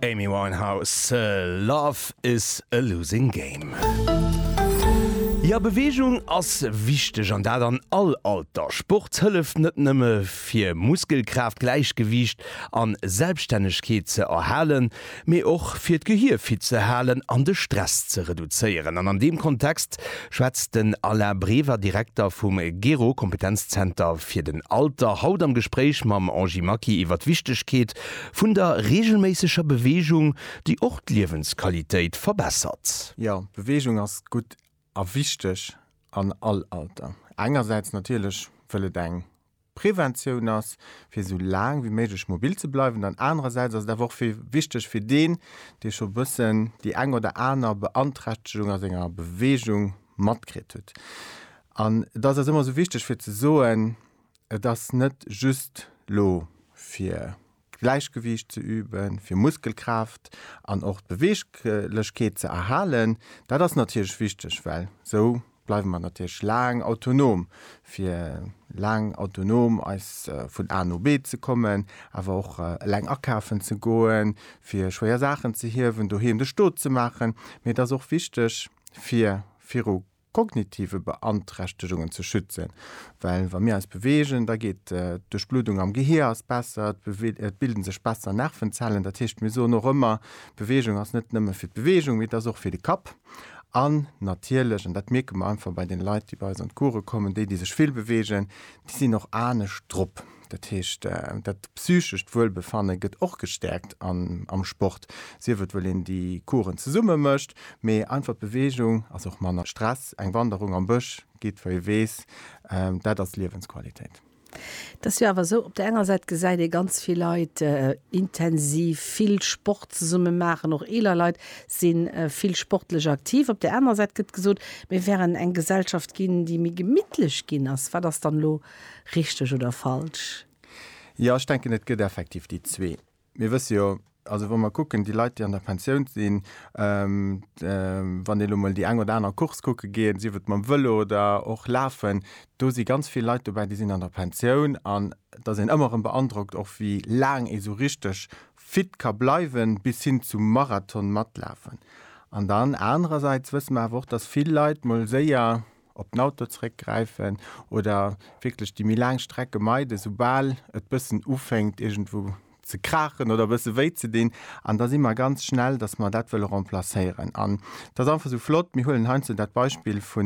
Amy Winehouse, Love is a losing game. Jo, Beweegung ass wichteg an dat an all Alter. Sport hëlleft net nëmme fir Muskelkraaft, Gläichgewiicht an Selbstännegkeet ze erhalen, mee och fir d'Gehir fit ze halen an de Stress ze reduzéieren. An an deem Kontext schwätzt den Alain Brever, Direkter vum GERO, Kompetenzzenter fir den Alter, haut am Gespréich mam Angie Maki iwwer d'Wichtegkeet vun der reegelméisseger Beweegung, déi och d'Liewensqualitéit verbessert. Jo, Beweegung ass gutt a wichteg an all Alter. Engersäits natierlech, wëll et eng Preventioun ass, fir esou laang wéi méiglech mobil ze bleiwen, an anerersäits ass et awer och fir wichteg fir deen, dee scho bëssen déi eng oder aner Beanträchtegung a senger Beweegung matkritt huet. An et ass eis ëmmer esou wichteg fir ze soen, et ass net just elo fir Gläichgewiicht ze üben, fir Muskelkraaft an och d'Beweeglechkeet ze erhalen. Dat ass natierlech wichteg, well esou bleiwe mer natierlech laang autonom, fir laang autonom eis vun A no B ze kommen, awer och eleng akafen ze goen, fir schwéier Saachen ze hiewen, doheem de Stot ze maachen. Mee et ass och wichteg, fir viru. kognitive Beanträchtegungen ze schützen, well wa mir eis beweegen, da geet d'Duerchbluddung am Gehier ass besser, et bilde sech besser Nervenzellen. Dat heescht, mir soen och ëmmer, Beweegung ass net nëmme fir d'Beweegung, mee et ass och fir de Kapp. An natierlech, an dat mierke mer einfach bei den Leit, déi bei eis an d'Course kommen, déi, déi sech vill beweegen, déi sinn och anescht drop. Dat heescht, dat psychescht Wuelbefanne gëtt och gestäerkt am Sport, sief et well een déi Coursen zesumme mécht, mee einfach d'Beweegung ass och manner Stress. Eng Wanderung am Bësch geet, wei ee weess, dat ass Liewensqualitéit. Et ass jo awer esou, op der enger Säit gesäit ee ganz vill Leit intensiv vill Sport zesumme maachen, och eeler Leit si vill sportlech aktiv. Op der anerer Säit gëtt gesot, mir wären eng Gesellschaft ginn, déi méi gemittlech ginn ass. Wat ass dann elo Richteg oder falsch? Jo, ech denken, et gëtt effektiv déi zwee. Mir wësse jo, also wa mer kucken, déi Leit, déi an der Pensioun sinn, wann ee lo mol déi eng oder aner Course kucke geet, sief et mam Vëlo oder och lafen, do si ganz vill Leit dobäi, déi sinn an der Pensioun. An et ass een ëmmer erëm beandrockt och, wéi laang ee sou richteg fit ka bleiwen, bis hin zum Marathon matlafen. An dann anerersäits wësse mer awer och, dass vill Leit mol séier op den Auto zréck gräifen oder wierklech déi méi laang Strecke meiden, soubal et bëssen ufänkt iergendwou ze kraachen oder bësse wéi ze dinn. An da si mer ganz schnell, datt mer dat wëlle remplacéieren. An et ass einfach esou flott, mir huelen heiansdo dat Beispill vu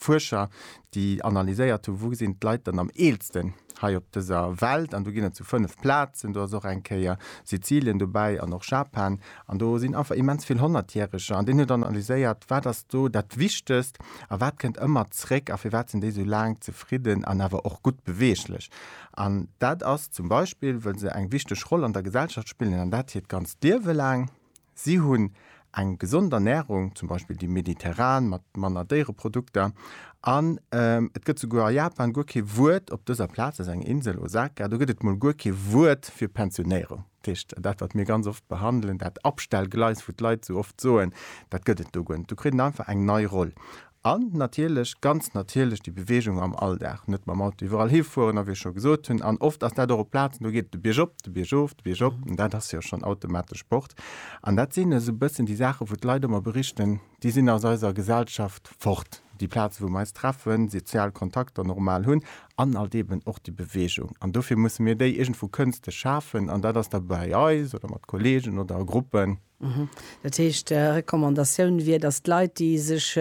Fuerscher, déi analyséiert hu wou sinn d'Leit dann am eelsten hei op dëser Welt. An do ginn et esou fënnef Plazen, do ass och eng Kéier Sizilien dobäi an och Japan. An do sinn einfach immens vill Honnertjäreger. An deen huet analyséiert, wat ass do dat Wichtegst a wat kënnt ëmmer zréck a firwat sinn déi esou laang zefridden an awer och gutt beweeglech. An dat ass zum Beispill, well se eng wichteg Roll an der Gesellschaft spillen an dat hiert ganzt Liewe laang. Si hunn eng gesond Ernärung, zum Beispill déi mediterran mat manner Déiereprodukter. An et gëtt souguer a Japan guer kee Wuert, op dëser Plaz, dat ass eng Insel, Osaka, do gëtt et mol guer kee Wuert fir Pensionéierung. Dat heescht, dat wat mir ganz oft behandelen, dat Abstellgleis, wou d'Leit esou oft soen, dat gëtt et do guer net. Do kritt en einfach eng nei Roll. An natierlech, ganz natierlech, déi Beweegung am Alldag, net mam Auto iwwerall hifueren a wéi ech scho gesot hunn, an oft ass dat och op Plazen, do geet et de Bierg op, de Bierg of, de Bierg op, dat ass jo schonn automatesch Sport. An dat sinn esou e bëssen déi Saachen, wou d'Leit ëmmer berichten, déi sinn aus eiser Gesellschaft fort, déi Plaze wou mer eis treffen, déi sozial Kontakter normal hunn an alt eben och déi Beweegung. An dofir musse mir déi iergendwou kënstlech schafen an dat ass da bei eis oder mat Kolleegen oder a Gruppen. Dat heescht, Recommandatioun wier, datt d'Leit, déi sech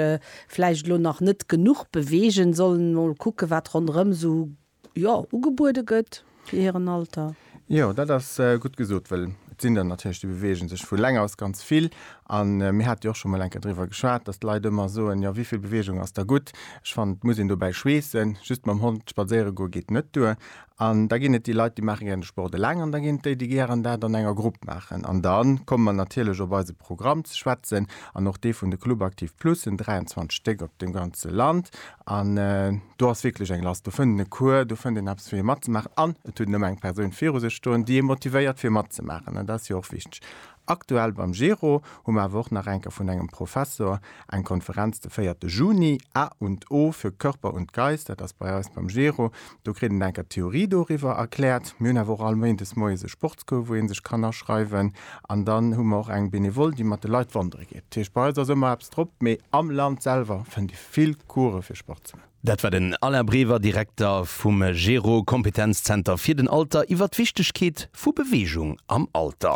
vläicht elo nach net genuch beweegen, sollen emol kucken, wat ronderëm esou jo, ugebuede gëtt fir hiren Alter. Jo, dat ass gutt gesot, wëll et sinn der natierlech, déi beweege sech vu leng aus ganz vill. A mir hate jo och scho mol eng Kéier driwwer geschwat, datt d'Leit ëmmer soen, jo, wéi vill Beweegung ass da gutt? Ech fannen, et muss een dobäi schweessen. Just mam Hond spadséiere goe geet net duer. An da ginn et déi Leit, déi maache gären de Sport eleng an da ginn et déi, déi gären dat an enger Grupp maachen. An da komme mer natierlech op eise Programm ze schwätzen an och dee vun de Club Active Plus, en 23 Stéck op dem ganze Land. An do ass wierklech eng Last. Do fënnt een e Cours, do fënnt een eppes fir hie matzemaachen an et huet en ëmmer eng Persoun viru sech stoen, déi ee motivéiert fir matzemaachen an dat ass jo och wichteg. Aktuell beim GERO hu mer awer och nach enker vun engem Professor eng Konferenz de véierte Juni, A und O für Körper und Geist, dat ass bei eis beim GERO, do kritt en enker d'Theorie doriwwer erkläert. Mir hunn awer och all Méindes moies e Sportscours wou ee sech kann aschreiwen an dann hu mer och eng Benevole déi mat de Leit wandere geet. Dat heescht bei eis ass ëmmer eppes. Drop, mee am Land selwer fënnt ee vill Course fir Sport ze man. Dat war den Alain Brever, Direkter vum GERO Kompetenzzenter fir den Alter iwwer d'Wichtegkeet vu Beweegung am Alter.